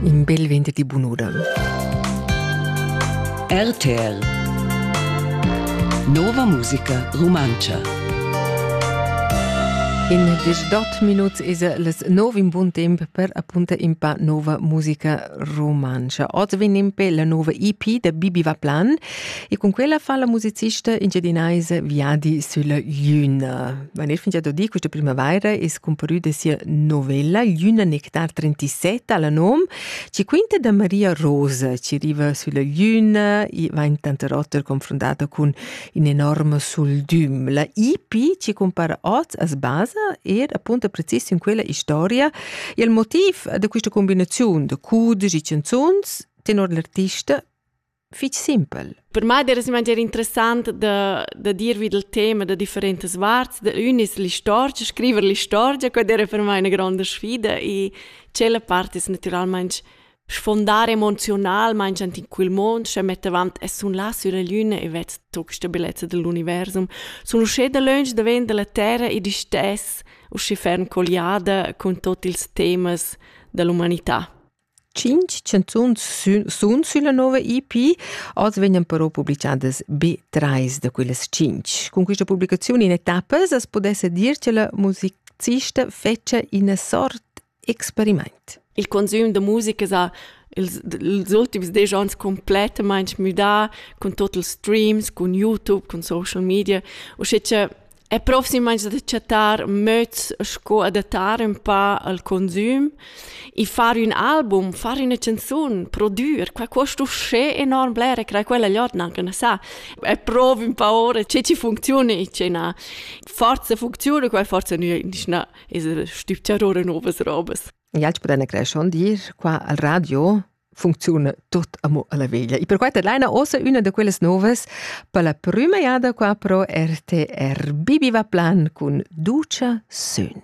In bel venderdi bunuda. RTL Nova musica rumantscha In disdot minut is les nov in bun temp per appunta in pa nova musica romantscha. Oz vegn in pe la nova EP da Bibi Vaplan e con quella fa la musicista engiadinaise Viadi sulla Juna. Mein Neffe ha dodì questa primavaira es cumparü da sia novella L'una nectar 37 alla nom, ci quinta da Maria Rosa, ci riva sulla luna, i va in tanta rotter confrontata con un enorme soldum. La IP ci compara oz as basa er appunto precis in quella historia e il motiv da questa combinazione de cudigi canzuns tenor l'artista fich simpel. Per mai era semai interessant da, da dir vid il tema da differentas varts. Da un es l'istorgia, scriver l'istorgia, quella era per mai una grande sfida e quella parte es naturalmente sfondare emocionalmente in quel mondo, se mette avanti e sun là sulla luna e ved tocca sta bellezza dell'universum. Sono uscì da lunge da ven dalla terra e di stess uscì ferm colliada con tutti ils temas dell'umanità. tschintg chanzuns sun sülla nouva EP. Oz vegnan però publichadas be trais da quellas tschintg. Cun quista publicaziun in etappas as pudessa dir cha la musicista fetscha üna sort experimaint. Il consüm da musica sa ils ultims desch ans complettamaing müdà cun tot ils streams, cun YouTube, cun social media, usche cha e proximamein da chattar möds sco adattar ün pa al consum e far ün album, far üna canzun, prodüer, qua cuost uschè enorm blera, crei quella gliodna anche na sa. E provi un pa ora che ci funziona e ce na forza funziona, quai forza nu nisch na es stüpchar ora novas robas. E alch podene creschon dir qua al radio funcziuna tut amo alla veglia. E per questa headliner ossa una da quelles noves per la prima jada qua pro RTR Bibiva Plan cun ducia sün.